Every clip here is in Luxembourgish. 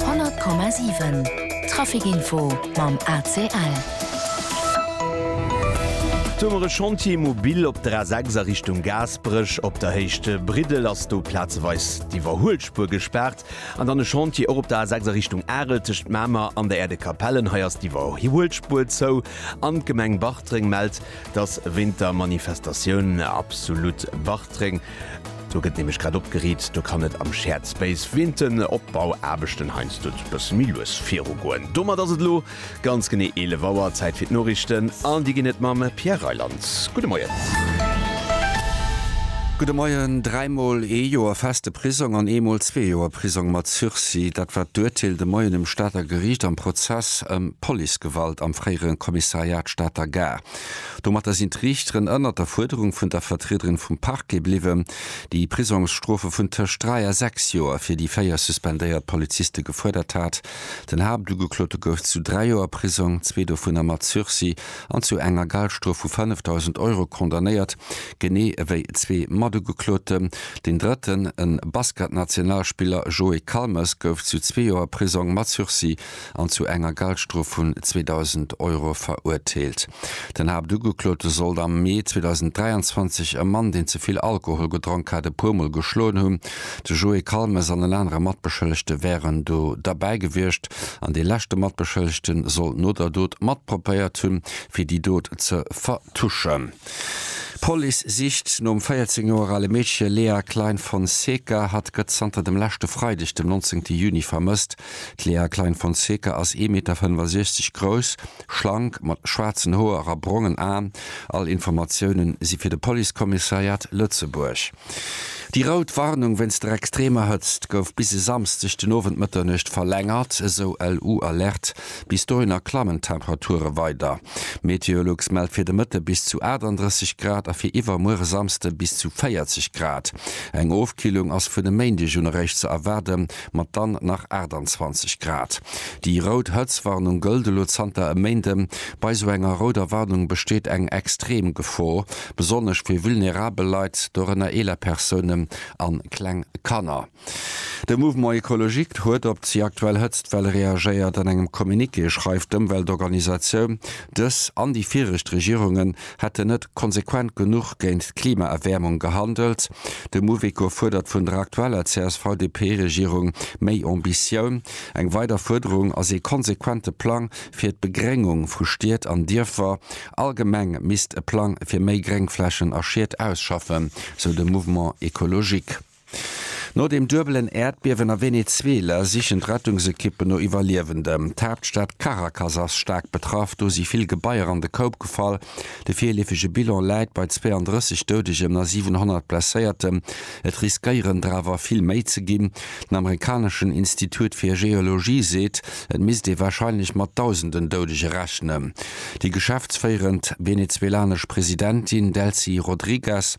100,7 Trafic Info mam ACL. Do mer e Chantier mobil op der A6 a Richtung Gaasperech. Op der Héicht Briddel ass do plazeweis d'Iwwerhuelspuer gespaart. An dann e Chantier och op der A6 a Richtung Arel tëscht Mamer an der Aire de Capellen. Hei ass d'Iwwerhuelspuer zou. An d'Gemeng Bartreng mellt, dass wéint der Manifestatioun Absolut Bartreng Do gëtt nämlech grad opgeriit, do kann et am Shared Space wéint den Opbauaarbechten heiansdo e bësse méi lues virugoen. Domat ass et elo ganz genee 11 Auer, Zäit fir d'Noriichten an déi ginn et mam Pierre Reyland. Gudde Moien. Gudde Moien. Dräi Mol ee Joer feste Prisong an ee Mol zwee Joer Prisong mat Sursis, dat war d'Urteel de Moien um Stater Geriicht am Prozess ëm Policegewalt am fréiere Kommissariat Stater Gare. Domatter sinn d'Riichteren ënnert der Fuerderung vun der Vertriederin vum Parquet bliwwen, déi Prisongsstrofe vun tëscht dräi a sechs Joer fir déi véier suspendéiert Poliziste gefuerdert hat. Den Haaptugeklote gouf zu dräi Joer Prisong, zwee dovunner mat Sursis, an zu enger Geldstrof vu 5.000 Euro condamnéiert, genee ewéi zwee Matugekloten. Deen drëtten, e Basketnationalspiller Joé Calmes, gouf zu zwee Joer Prisong mat Sursis an zu enger Galdstrof vun 2.000 Euro verurteelt. Den Haaptugeklote sollt am Mee 2023 e Mann, deen ze vill Alkohol gedronk hat, e puer Mol geschloen hunn. De Joé Calmes an en anere Matbeschëllegte wären do derbäi gewiescht an dee leschte Matbeschëllegte soll no der Dot matprobéiert hunn, fir déi Dot ze vertuschen. D'Police sicht nom 14 Joer ale Meedche Lea Klein-Fonseca. Hatt gëtt zanter dem leschte Freideg, dem 19 Juni, vermësst. D'Léa Klein-Fonseca ass ee Meter 65 grouss, schlank, mat schwaarzen Hoer a brongen Aen. All Informatioune si fir de Policekommissariat Lëtzebuerg. Déi rout Warnung wéinst der extremer Hëtzt gouf bis e Samsdeg den Owend Mëtternuecht verlängert, esou LU-Alerte. Bis dohinner klammen d'Temperature weider. Meteolux mellt fir de Mëtte bis zu 38 Grad a fir iwwermuere Samsde bis zu 40 Grad. Eng Ofkillung ass vun e Méindeg un eréischt ze erwaarden. mat dann nach 28 Grad. Déi rout Hëtztwarnung gëllt elo zanter e Méinde. Bei esou enger rouder Warnung besteet eng extrem Gefor, besonnesch fir vulnerabel Leit, dorënner eeler Persounen an kleng Kanner. De Mouvement Ecologique huet op déi aktuell Hëtztwell reagéiert. An engem Communiqué schreift d'Ëmweltorganisatioun, dës an déi viregt Regierungen hätten net konsequent genuch géint d'Klimaerwäermung gehandelt. De Mouveco fuerdert vun der aktueller CSV-DP-Regierung méi Ambitioun. Eng weider Fuerderung ass ee konsequente Plang fir d'Begréngung vu Stied an Dierfer. All Gemeng misst e Plang fir méi Gréngflächen a Schied ausschaffen, sou de Mouvement écologique. No dem duebelen Äerdbiewen a Venezuela sichen d'Rettungsekippen no Iwwerliewenden. D'Haaptstad Caracas ass staark betraff, do si vill Gebaier an de Koup gefall. De virleefege Bilan läit bei 32 Doudegen a 700 Blesséierten, et riskéieren der awer vill méi ze ginn. Den amerikaneschen Institut fir Geologie seet, et misst ee warscheinlech mat Dausenden Doudege rechnen. Déi geschäftsféierend venezuelanesch Presidentin Delcy Rodriguez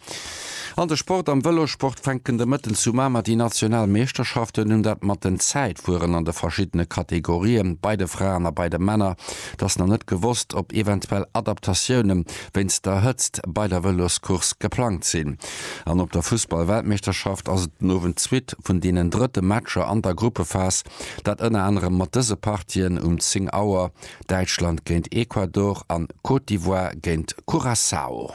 An de Sport, Am Vëlossport fänken de Mëtten zu Mamer déi national Meeschterschaften un. Dat mat den Zäitfueren an de verschiddene Kategorien bei de Fraen a bei de Männer. Et ass nach net gewosst, ob eventuell Adaptatioune wéinst der Hëtzt bei der Vëloscourse geplangt sinn. An op der Fussball-Weltmeeschterschaft ass et den Owend d'Suite vun deenen drëtte Matcher an der Gruppephas. Dat ënner anerem mat dëse Partien um 10 Auer, Däitschland géint Ecuador an Côte d'Ivoire géint Curaçao.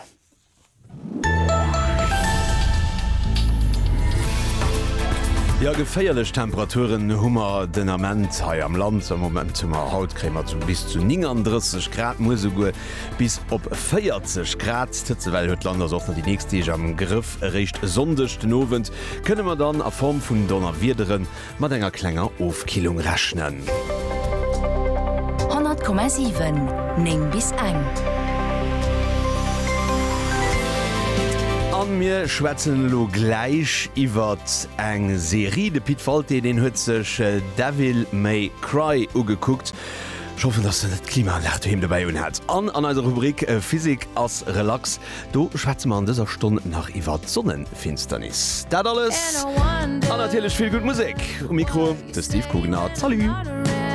Jo, geféierlech Temperaturen hu mer den Ament hei am Land. Am Moment hu mer haut kréie mer zu bis zu 39 Grad, muer esouguer bis op 40 Grad. D'Hëtzewell huet d'Land ass och nach déi nächst Deeg am Grëff. Eréischt e Sonndeg den Owend kënne mer dann a Form vun Donnerwiederen Mat enger klenger Ofkillung rechnen. 100,7, 9 bis eng. A mir schwätzen elo gläich iwwert eng Serie. De Pit Walté, deen huet sech Devil May Cry ugekuckt. Ech hoffen, dass en net d'Klimaanlag doheem dobäi unhat. An an eiser Rubrik Physik ass relax, do schwätze mer an dëser Stonn nach iwwert d'Sonne. Finsternis. Dat alles an natierlech vill gutt Musek. Um Mikro de Steve Coogan a Salut!